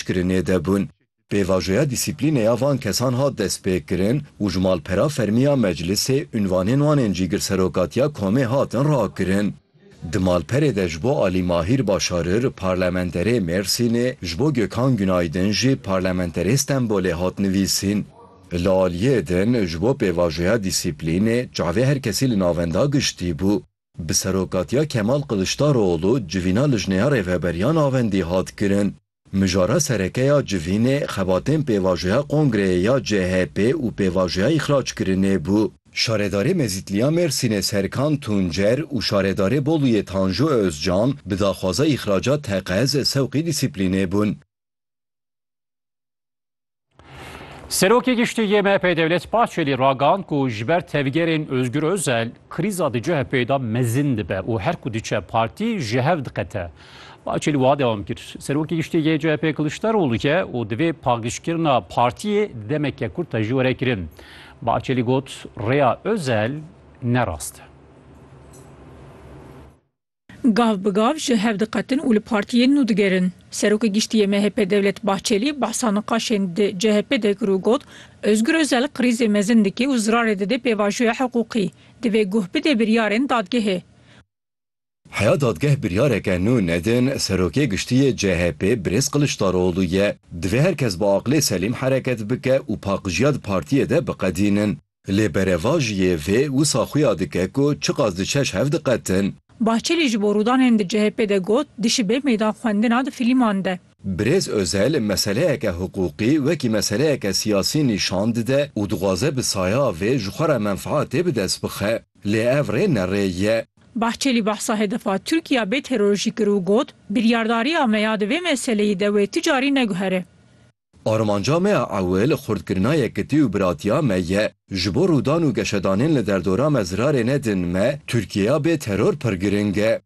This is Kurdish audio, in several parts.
kirinê de bûn. Pêvajoya dîsîplînê ya van kesan hat destpêkirin û ji malpera fermî ya meclisê unvanên wan ên Cîgirserokatiya Komê hatin rakirin. Di malperê de ji bo Alî Mahîr Başarir Parlamenterê Mêrsînê, ji bo Gökhan Günaydın jî Parlamenterê Stenbolê hat nivîsîn. Li aliyê din ji bo pêvajoya dîsîplînê çavê her kesî li navenda giştî bû. Bi serokatiya Kemal Kiliçdaroglû civîna Lijneya Rêveberiyan a Wendî hat kirin. Mijara sereke ya civînê xebatên pêvajoya kongreyê ya CHP'ê û pêvajoya îxrackirinê bû. Şaredarê Mezîtliya Mêrsînê Serkan Tuncer û şaredarê Boluyê Tanju Ozcan bi daxwaza îxraca teqez sewqî dîsîplînê bûn. Serokê Giştî yê MHP'ê Dewlet Bahçelî ragand ku ji ber tevgerên Ozgur Ozel krîza di CHP'da mezin dibe û her ku diçe partî ji hev diqete. Bahçelî wiha dewam kir, Serokê Giştî yê CHP'ê Kiliçdaroglu ye û divê paqijkirina partiyê demeke kurte jî were kirin. Bahçelî got, Rêya Ozel ne rast e. Gav bi gav ji hev diqetin û li partiyên nû digerin. Serokê Giştî yê MHP Devlet Bahçelî behsa niqaşên di CHP'ê de kir û got, Ozgur Ozel krîzê mezin dike û zirarê dide pêvajoya hiqûqî. Divê guh bide biryarên dadgehê. Heya dadgeh biryareke nû nedin, Serokê Giştî yê CHP'ê Birêz Kiliçdaroglu ye. Divê her kes bi aqilê selîm hereket bike û paqijîya di partiyê de biqedînin. Lê berevajiyê vê wisa xuya dike ku çiqas diçe ji hev diqetin. Bahçelî ji bo rûdanên di CHP'ê de got, Dişibe meydan xwendina di filîman de. Birêz Özel meseleyeke hiqûqî wekî meseleyeke siyasî nîşan dide û dixwaze bi saya vê ji xwe re menfaetê bi dest bixe. Lê ev rê ne rê ye. Bahçelî behsa hedefa Tirkiya bê terorjî kir û got, Biryardariya me ya di vê meseleyî de wê ti carî neguhere. Armanca me ya ewil xurtkirina yekitî û biratiya me ye. Ji bo rûdan û geşedanên li derdora me zirarê nedin me, Tirkiyeya bê teror pir giring e.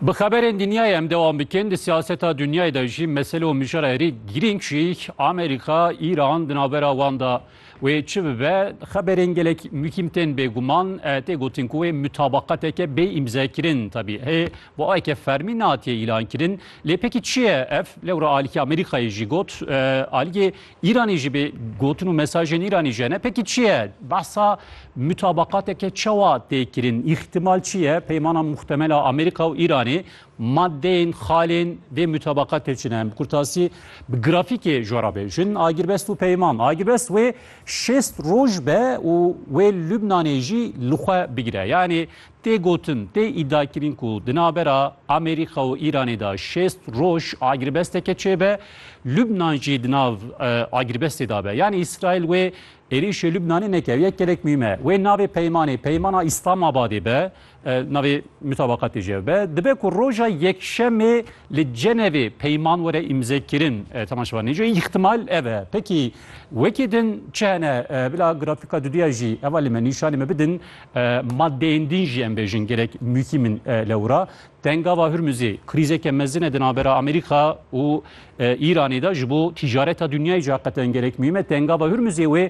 Bi xeberên dinyayê em dewam bikin. Di siyaseta dinyayê de jî mesele û mijara herî girîng jî Amerîka, Îran di navbera wan de. Wê çi bibe, xeberên gelek muhîm tên bêguman, tê gotin ku wê mutabaqateke bê îmzekirin tevî hê bi aweke fermî natiye îlankirin. Lê pekî çi ye ev? Lewra alîkê Amerîkayê jî got, alîkê Îranê jî bê gotin û mesajên Îranê jî hene. Pekî çi ye? Behsa mutabaqateke çawa tê kirin? Îhtimal çi ye peymana muhtemel a Amerîka û Îranê Madeyên xalên vê mutabaqa têçin em bi kurtasî bi grafîkê jora bê jin agirbest û peyman. Agirbest wê şêst roj be û wê Lubnanê jî li xwe bigire. Yanî tê gotin, tê îdiakirin ku di navbera Amerîka û Îranê de şêst roj agirbesteke çêbe, Lubnan jî di nav agirbestê de be. Yanî Îsraîl wê êrîşê Lubnanê neke. Ew yek gelek muhîm e. Wê navê peymanê, peymana Îslamabadê be. Navê mutabaqatê jî ev be. Dibe ku roja Yekşemê li Cenevê peyman were îmzekirin. Temaş va nêce îhtimal ev e. Pekî wekî din çi hene? Bila grafîka duduya jî eva li me nîşanê me bidin. Madeyên din jî em bêjin gelek muhîm in lewra. Tengava Hurmuzê krîzeke mezin e di navbera Amerîka û Îranê de ji bo tîcareta dunyayê jî heqeten gelek muhîm e. Tengava Hurmuzê wê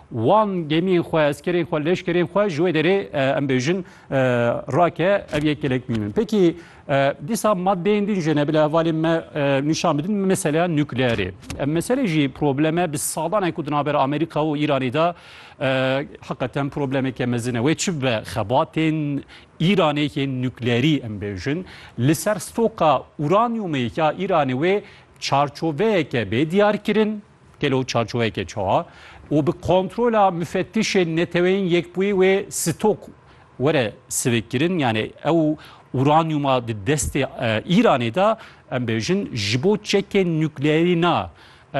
Wan gemiyên xwe, eskerên xwe, leşkerên xwe ji wê derê em bêjin rake ev yek gelek mîm in. Pekî dîsa madeyên din jê ne bila hevalên me nîşan bidin meseleya nukleerê. Em meselê jî probleme bi sadanek ku di navber Amerîka û Îranê de heqeten problemeke mezin e. Wê çi be xebatên Îranê yê nukleerî em bêjin li ser stoka uranyumê ya Îranê wê çarçoveyeke bê diyar kirin. Gelo çarçoveyeke çawa û bi kontrola mufettişên Neteweyên Yekbûyî wê stok were sivikkirin? Yanî ew uranyûma di destê Îranê de em bêjin ji bo çekên nukleerî na.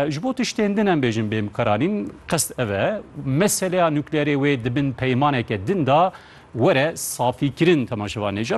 Ji bo tiştên din em bêjin bê mikaranîn. Qest ev e meseleya nukleerê wê di bin peymaneke din de were safîkirin. Temaşevanê ca.